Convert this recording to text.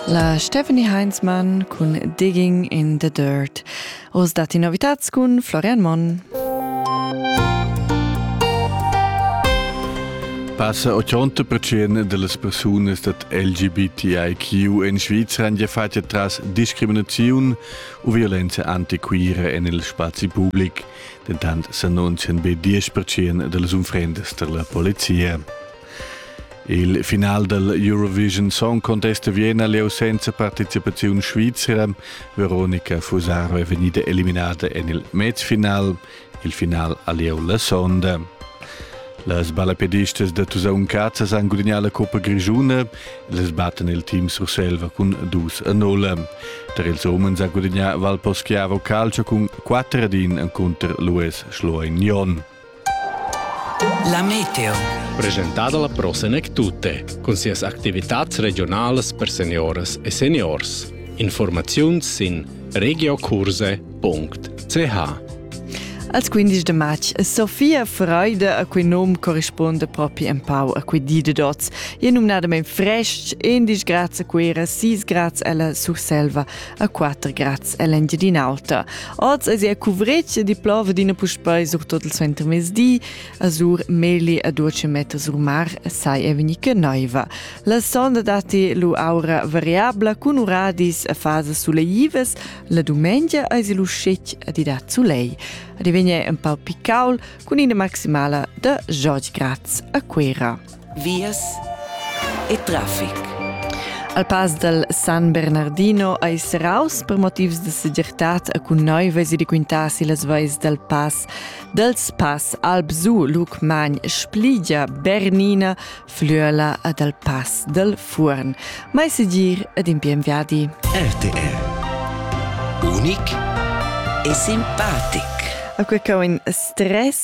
La Stephanie Heinzmann cun Digging in the Dirt. Oz datti novitats cun Florian Monn. Passa 80% delle persone dat LGBTIQ in Svizzera han fatto tras discriminazione o violenza antiquira en il spazi pubblic, dentant s'annunzian be 10% delle unfrende della polizia. Il final del Eurovision Song Contest a Vienna leu senza participaziun svizzera. Veronica Fusaro è vegnida eliminata en il mezfinal, il final a lieu la sonda. Las balapedistas da Tusaun Cazza han gudignà la Coppa Grigiuna e les batten il team Surselva cun 2 a 0. Tar ils umens ha gudignà Valposchiavo Calcio cun 4 ad 1 contro Luis Schloignon. La meteo. Presentada la Pro Senec Tutte, cun sias activitats regionalas per senioras e seniors. Informaziun sin regiocurse.ch Als 15 de matg Sofia Freude a quei nom corrisponde propi empau a quei di de dots. E numnadament frestg, 11 grads a Cuera, 6 grads ella Surselva, a quatter grads ell'Engiadin'Alta. Oz es ia cuvretg e diplova d'ina puspei surtot il suentermezdi. A sur Meli a duce meter sur mar sai e venica naiva. La sonda datti lu aura variabla cun uradis a fasas suleivas. La dumengia eis lu scetg a di dat sulei. A divegna un pau picaul cun ina maximala da 10 grads a Cuera. vias e traffic. Al pass dal San Bernardino ais raus per motivs da segirtad e cun noivas e requintas las vais dal pass dels Pass Alpsu Luc Magn Spligia Bernina Flüela e dal Pass del Furn. Mai segir ed in bien viadi. RTR Unic e simpatic. A quei in stress